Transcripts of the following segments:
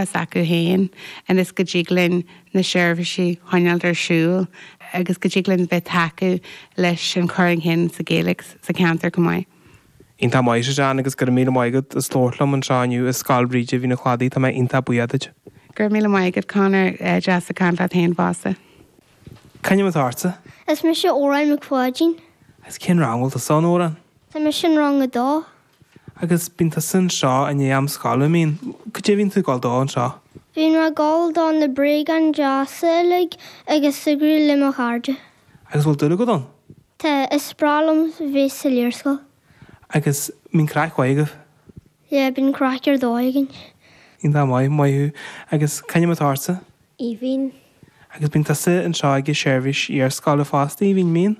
s'acu féin ionas go dtig linn na seirbhísí choinneáilt ar siúl agus go dtig linn bheith tacú leis an chur chun cinn sa Ghaeilge sa cheantar chomh maith. Iontach maith a John agus gura míle maith agat as labhairt liom anseo inniu i Scoil Bhríde Mhín an Chladaigh tá mé iontach buíoch duit. Gura míle maith agat Conor, deas ag caint leat féin fosta. C'ainm atá ortsa? Is mise Órán Mac Pháidín. Agus cén rang bhfuil tusa ann Órán? Tá mise in rang a dó. Agus bíonn tusa anseo i ndiaidh am scoile, an mbíonn? Cad é a bhíonn tú ag gabháil dó anseo? Bíonn mé ag gabháil do na bréagáin deasa uilig agus súgradh le mo chairde. Agus an bhfuil dúil agat ann? Tá, is breá liom bheith sa iarscoil. Agus an mbíonn craic mhaith agaibh? Yeah, bíonn craic ar dóigh againn. Iontach maith, maith thú. Agus cén ainm atá ortsa? Aoibhinn. Agus bíonn tusa anseo ag an seirbhís iarscoile fosta, Aoibhinn, an mbíonn?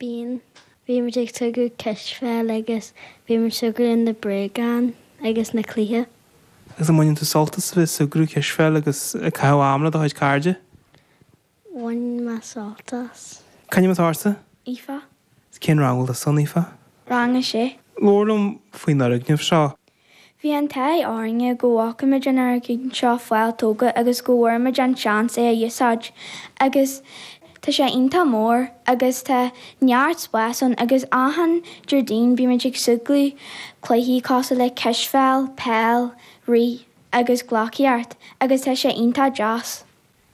Bíonn, bímid ag súgradh cispheil agus bímid súgradh in na bréagáin agus na cluichí. Agus an mbaineann tú sult as a bheith ag súgradh, cispheil agus ag caitheamh ama le do chuid cairde? Baineann mé sult as. C'ainm atá ortsa? Aoife. Cén rang a bhfuil tusa ann, Aoife? Rang a sé. Labhair liom faoin fhoirgneamh seo. Bhí an t-ádh orainne go bhfacaimid an fhoirgneamh seo fáil tógtha agus go bhfuaireamid an seans é a úsáid agus tá sé iontach mór agus tá neart spáis ann agus achan Déardaoin bímid ag súgradh cluichí cosúil le cispheil, peil, rith agus gleacaíocht agus tá sé iontach deas.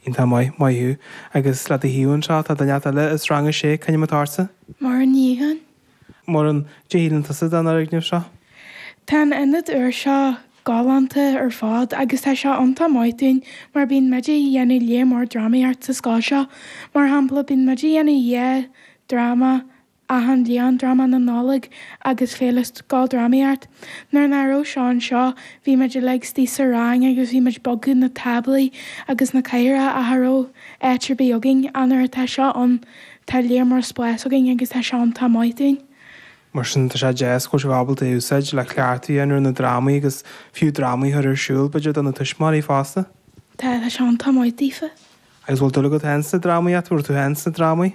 Iontach maith. Maith thú. Agus le do thaobh anseo, tá duine inteacht eile as rang a sé. C'ainm atá ortsa? Muireann Ní Eidhin. Muireann, cad é a shíleann tusa den fhoirgneamh seo? Tá an ionad úr seo galánta ar fad agus tá sé iontach maith dúinn mar bíonn muid a' dhéanamh lear mór drámaíocht sa scoil seo. Mar shampla, bíonn muid a' dhéanamh dhá dhráma Achan bliain Dráma na Nollag agus Féile Scoildrámaíocht. Nuair nach raibh seo anseo, bhí muid uilig istigh sa rang agus bhí muid bogadh na táblaí agus na cathaoireacha cha raibh áit ar bith againn. Ach nuair atá seo ann, tá lear mór spáis againn agus tá seo iontach maith dúinn. Mar sin, tá sé deas go bhfuil sibh ábalta é a úsáid le cleachtadh a dhéanamh ar na drámaí agus fiú drámaí a chur ar siúl, b'fhéidir do na tuismitheoirí fosta. Tá, tá sé iontach maith daofa. Agus bhfuil dúil agat féin sna drámaíocht, bhfuil tú féin sna drámaí?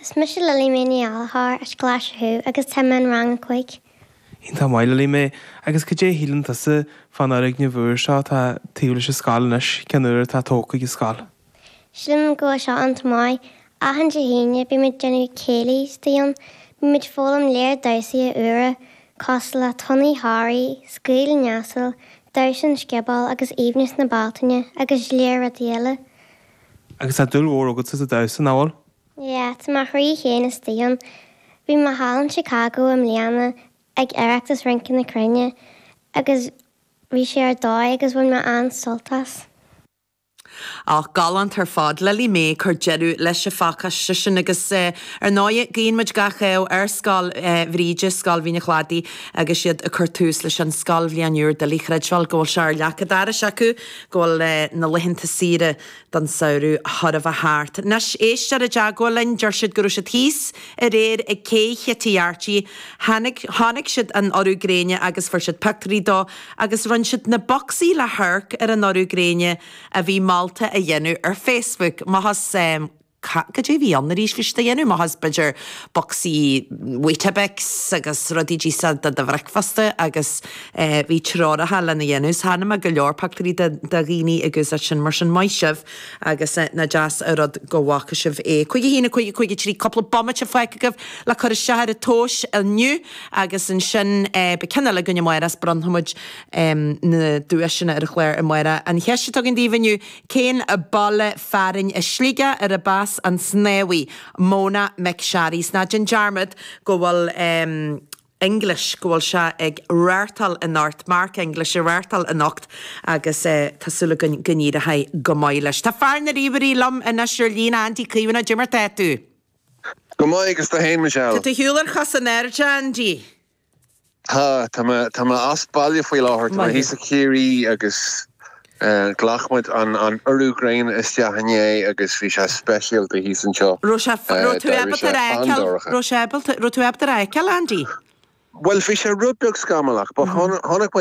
Is mise Lily Mae Ní Ghallchóir as Glaise Chú agus tá mé in rang a cúig. Iontach maith Lily Mae, agus cad é a shíleann tusa fán fhoirgneamh úr seo atá taobh leis an scoil anois, ceann úr atá tógtha ag an scoil? Sílim go bhfuil seo iontach maith, achan Dé hAoine bímid ag déanamh céilí istigh ann, bímid ag foghlaim lear damhsaithe úra cosúil le Tonnaí Thoraí, Scaoil an Asal, Damhsa an Sciobóil agus Aoibhneas na Bealtaine agus lear rudaí eile. Agus tá dúil mhór agatsa sa damhsa, nach bhfuil? Yeah, tá mo chroí féin istigh ann. Bhí mé thall in Chicago i mbliana ag Oireachtas Rince na Cruinne agus bhí sé ar dóigh agus bhain mé an-sult as. Och, galánta ar fad. Lily Mae ag cur deireadh leis an phacáiste sin agus ar ndóigh guíonn muid gach rath ar Scoil Bhríde, Scoil Mhín an Chladaigh agus iad ag cur tús leis an scoilbhliain úr. Doiligh a chreidbheáil go bhfuil sé ar leac an dorais acu, go bhfuil na laethanta saoire don samhradh chóir a bheith thart. Anois, éisteoir i dteagmháil linn, deir siad go raibh siad thíos aréir ag cé Chití Arty, chonaic, chonaic siad an urú gréine agus fuair siad pioctúirí dó agus rinn siad na bocsaí le hamharc ar an urú gréine a bhí molta a dhéanamh ar Facebook. amach as, eh, ca, cad é a bhí ann arís, bhí siad á dhéanamh amach as b'fhéidir bocsaí Weetabix agus rudaí deasa do do bhricfeasta agus eh bhí treoracha lena dhéanamh, so chonaic mé go leor pictiúirí de de dhaoine ag úsáid sin mar sin maith sibh agus eh nach deas an rud go bhfaca sibh é. Cúig a haon a cúig a cúig a trí cúpla bomaite fágtha agaibh le cur isteach ar an tomhas inniu agus ansin eh beidh ceann eile againn amárach is bronnfaimid em na duaiseanna ar an chlár amárach. An cheist atá agam daoibh inniu Cén baile fearainn i Sligeach arb as an snámhaí, Mona McSharry? 'S ná déan dearmad go bhfuil English, go bhfuil sé ag reáchtáil anocht, Mark English ag reáchtáil anocht agus tá súil againn go n-éireoidh go maith leis. Tá fear na ríomhairí liom anois ar an líne, Andy Caomhánach, cad é mar atá tú? Go maith agus tú fhéin Michelle? Tá tú ar shiúl ar chos in airde Andy. Tá mé as baile faoi láthair. Tá mé thíos i Ciarraí agus ghlac muid an urú gréine isteach inné agus bhí sé speisialta thíos anseo. Raibh sé fíor, raibh tú ábalta é a fheiceáil, raibh sé ábalta, raibh tú ábalta é a fheiceáil Andy? Bhuel bhí sé rud beag scamallach but chonaic muid